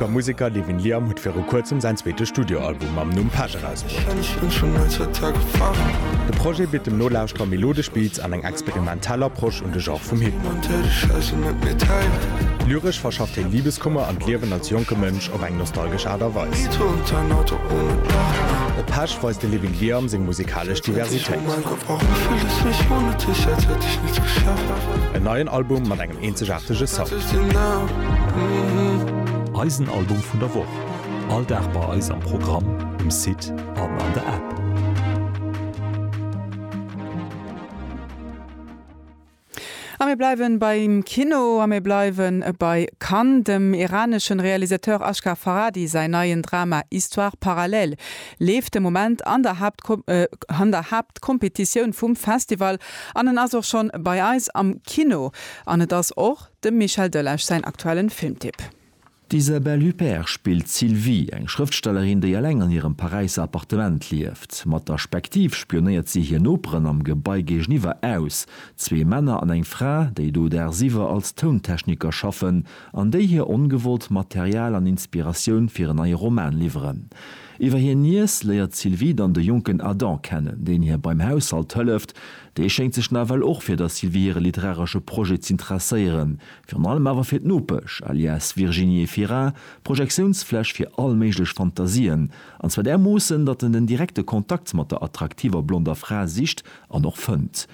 De Museker Devin Liam huet viru kuerzem säin zweete Studioalbum mam Numm Page erausbruecht. De Projet bitt dem Nolauschterer melodesch Beats an eng experimentell Approche un de Genre vum Hip-Hop. Lyresch verschafft hien Libeskummer an d'Liewen als jonke Mënsch op eng nostalgesch Aart a Weis. Op Page weist de Levin Liam seng musekalesch Diversitéit. Eenzegaartege Sound. Eisen Album vun der Woch, all Dag bei eis am Programm, um Site an an der App. A mir bleiwen beim Kino a mir bleiwen bei Cannes. Dem iraneschen Realisateur Ashghar Farhadi säin neien Drama Histoires parallèles leeft de Moment an der Haaptkategorie. d'Kompetitioun vum Festival an en ass och schonn bei eis am Kino an et ass och dem Michel Delage säin aktuellen Filmtipp. D'Isabelle Huppert spillt d'Sylvie, eng Schrëftstellerin, déi eleng an hirem Paräisser Appartement lieft. Mat der Spektiv spionéiert si hir Noperen am Gebai géigeniwwer aus, zwee Männer an eng Fra, déi do dagsiwwer als Tountechniker schaffen an déi hir ongewollt Material an Inspiratioun fir en neie Roman liwweren. Iwwer hir Niess léiert d'Sylvie dann de jonken Adam kennen, deen hir beim Haushalt hëlleft. Dee schéngt sech nawell och fir der Sylvie hire literaresche Projet z'interesséieren, virun allem awer fir d'Nopesch, alias Virginie Fira, Projektiounsfläch fir all méiglech Fantasien, an zwar därmoossen, datt en den direkte Kontakt mat der attraktiver blonder Fra sicht an och fënnt.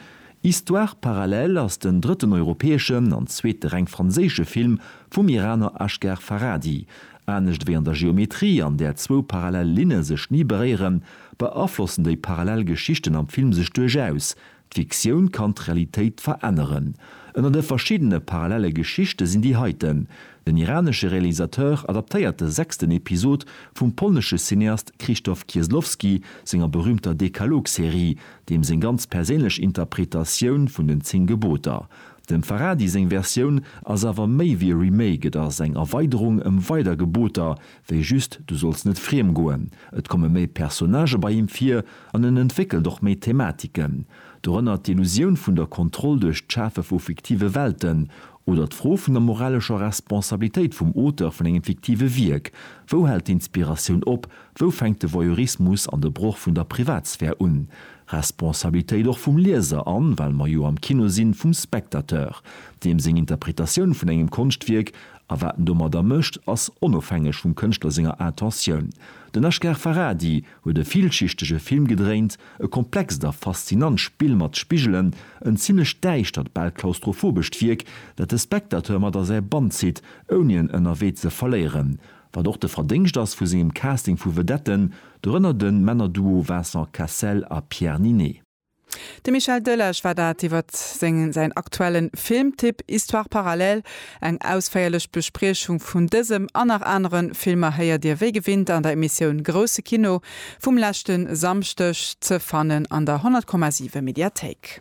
Histoires parallèles ass den drëtten europäeschen an zweete reng franséische Film vum Iraner Asghar Farhadi, Anescht wéi an der Geometrie, an där zwou parallel Linne sech ni beréieren, beaflossen déi parallel Geschichten am Film sech duerchaus. D'Fiktioun kann d'Realitéit veränneren. Ënner de verschiddene parallelle Geschichte sinn déi heiten. Den iranesche Realisateur adaptéiert de sechsten Episod vum polnesche Cineast Krzysztof Kieslowski senger berüümter Dekalog-Serie, deem seng ganz perséinlech Interpretatioun vun den Zéng Geboter. Dem Farhadi seng Versioun ass awer méi wéi e Remake, et ass eng Erweiderung ëm weider Geboter wéi just du solls net friem goen. Et komme méi Personnagë bei him vir an en entwéckelt och méi Thematiken. Dorënner d'Illusioun vun der Kontroll duerch d'Schafe vu fiktive Welten oder d'Fro vun der moralescher Responsabilitéit vum Auteur vun engem fiktive Wierk, wou hält d'Inspiratioun op, Wou fänkt de Voyeurismus an de Broch vun der Privatsphär un? Responsabilitéit och vum Lieser an, well mer jo am Kino sinn, vum Spectateur. Deem seng Interpretatioun vun engem Konschtwierk a wat en domadder mécht, ass onofhängeg vum Kënschtler senger Intentioun. Den Ashgar Farhadi huet e villschichtege Film gedréint, e komplext a faszinant Spill mat Spigelen, en zimlech däischtert, bal klaustrophobescht Wierk, dat de Spectateur mat a säi Bann zitt, ouni en ënnerwee ze verléieren. Wat och de Verdéngscht ass vu sengem Casting vu Vedetten, dorënner de Männerduo Vincent Cassel a Pierre Ninet. De Michel Delage war dat iwwert säin aktuellen Filmtipp Histoires parallèles. Eng ausféierlech Bespriechung vun dësem an nach anere Filmer héiert Dir wéi gewinnt an der Emissioun Grousse Kino vum leschte Samschdeg, ze fannen an der 100,7 Mediathéik.